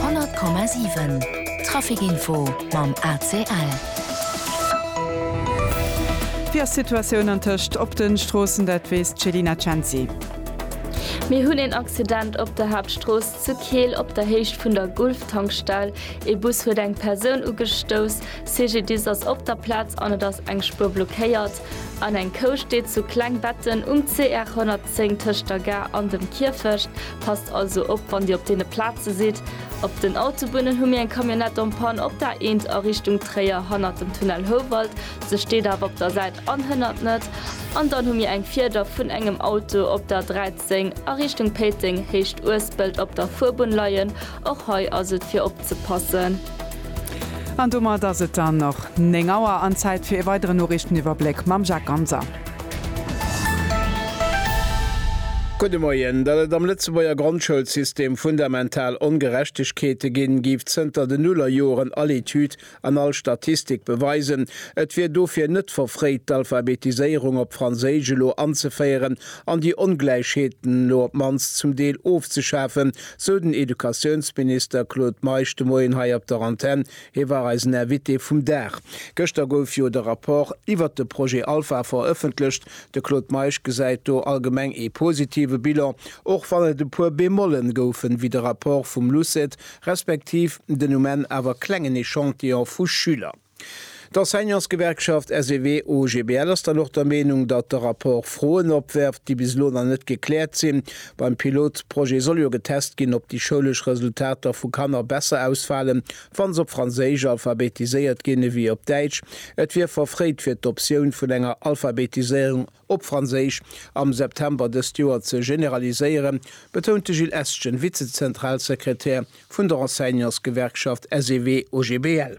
100,7 Traficinfo mam ACL. Wéi ass d'Situatioun antëscht op de Stroossen, dat weess d'Selina Cenci. Mir hunn een Accident op der Haaptstrooss zu Keel op der Héicht vun der Gulf-Tankstell. Ee Bus huet eng Persoun ugestouss. CGDIS ass op der Plaz an et ass eng Spuer blockéiert. An eng Kou steet zu Klengbetten um CR 110 tëscht der Gare an dem Kierfecht. Passt also op wann Dir op deene Plaze sidd. Op den Autobunnen hu mir eng Camionnette en panne, op der eent a Richtung Tréier hannert dem Tunnel Houwald, se steet awer op der Säit an hënnert net. An dann hu mir eng Fieder vun engem Auto op der 13 a Richtung Péiteng, Héicht Uespelt op der Fuerbunn leien. Och hei ass et fir op. ze passen. An domat ass et dann och 9 Auer an Zäit fir ee weideren Noriichteniwwerbléck mam Jacques Ganser. Gudde Moien. Datt et am Lëtzebuerger Grondschoulsystem fundamental Ongerechtegkeete ginn, géif zënter den Nullerjoren all Etüd An all Statistik beweisen, et wier dofir net verfréit, d'Alphabetiséierung op Franséisch elo anzeféieren an déi Ongläichheeten elo op d'mannst zum Deel ofzeschafen, sou den Educatiounsminister Claude Meisch de Moien hei op der Antenn. Hie war eisen Invité vum Dag. Gëschter gouf jo de Rapport iwwert de Projet Alpha verëffentlecht. De Claude Meisch gesäit do allgemeng ee positive Bilan, och wann et e puer Bemollen goufen, wéi de Rapport vum LUCET respektiv den um Enn awer klengen Echantillon vu Schüler. D'Enseignantsgewerkschaft SEW-OGBL ass dann och der Meenung, datt de Rapport Froen opwerft, déi bis elo nach net gekläert sinn. Beim Pilotprojet soll jo getest ginn, ob déi schoulesch Resultater vu Kanner besser ausfalen, wa se op Franséisch alphabetiséiert ginn ewéi op Däitsch. Et wier verfréit, fir d'Optioun vun enger Alphabetiséierung op Franséisch, am September dëst Joer ze generaliséieren, betount de Gilles Estgen, Vizezentralsekretär vun der Enseignantsgewerkschaft SEW-OGBL.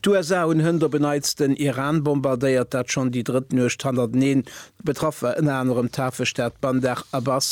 D'USA hunn hënt op en Neits den Iran bombardéiert, dat schonn déi drëtt Nuecht hannerteneen. Betraff war ënner anerem d'Hafestad Bandar Abbas.